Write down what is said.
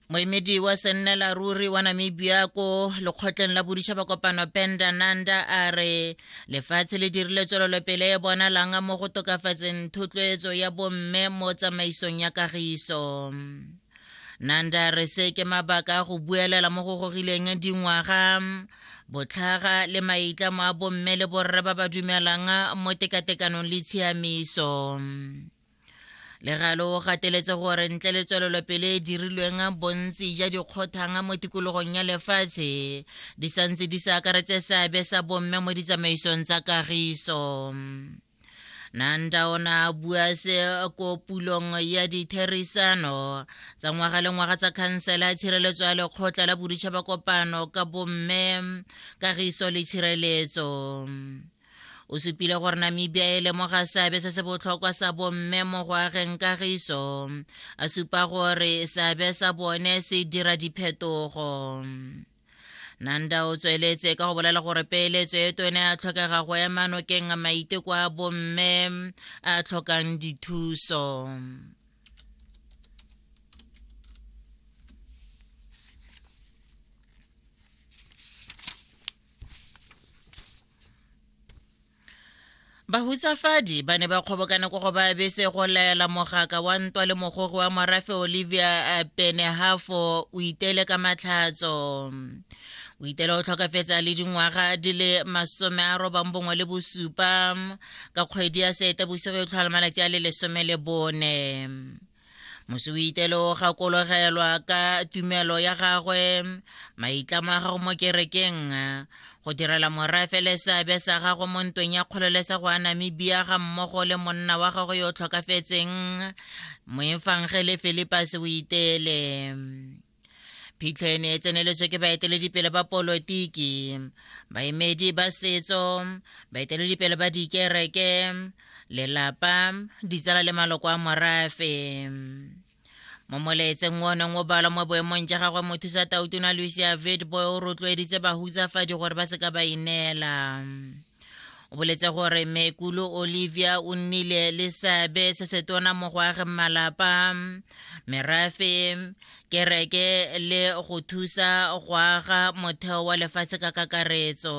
moemedi wa sennela ruri wa namibia ko lekgotleng la boditšhaba kopano penda nanda a re lefatshe le dirile tswelelopele e bonalang mo go tokafatseng thotloetso ya bomme mo tsamaisong ya kagiso nanda re se ke mabaka a go buelela mo go gogileng dingwaga botlhaga le maitlamo a bomme le borre ba ba dumelang mo tekatekanong le tshiamiso legalo o gateletse gore ntle le tswelelopele e dirilweng bontsi ja dikgothang mo tikologong ya lefatshe di santse di sa akaretse seabe sa bomme mo ditsamaisong tsa kagiso nanda o ne a bua se ko pulong ya ditherisano tsa ngwaga le ngwaga tsa khansela ya tshireletso ya lekgotla la boditšhaba kopano ka bomme kagiso le tshireletso o supile gore namibia e lemoga seabe se se botlhokwa sa bomme mo go ageng kagiso a supa gore seabe sa bone se dira diphetogo nanda o tsweletse ka go bolela gore peeletso e tone a tlhokega go ema nokeng maiteko a bomme a tlhokang dithuso bahutsafadi ba ne ba kgobokana ko go ba bese go laela mogaka wa ntwa le mogogi wa morafe olivia eh, penehafo o itele ka matlhatso o itele o tlhokafetsa le dingwaga di le masome a robang bongwe le bosupa ka kgwedi ya seeta bosigo e tlhola malatsi a le lesome le bone mosuitelo o gakologelwa ka tumelo ya gagwe maitlamo a gago mo kerekeng go direla morafe le seabe sa gago mo ntweng ya kgololesego ya namibia ga mmogo le monna wa gago yo o tlhokafetseng moefangele philipus o itele phitlho e ne e tseneletswe ke baeteledipele ba polotiki baemedi ba setso baeteledipele ba dikereke lelapa ditsala le maloko a morafe mo molaetseng o neng o balwa mo boemong ja gagwe mothusa tautona lucia vidboy o rotloeditse bahutsafadi gore ba seka ba ineela o boletse gore mekulo olivia o nnile le seabe se se tona mo go ageng malapa merafe kereke le go thusa go aga motheo wa lefatshe ka kakaretso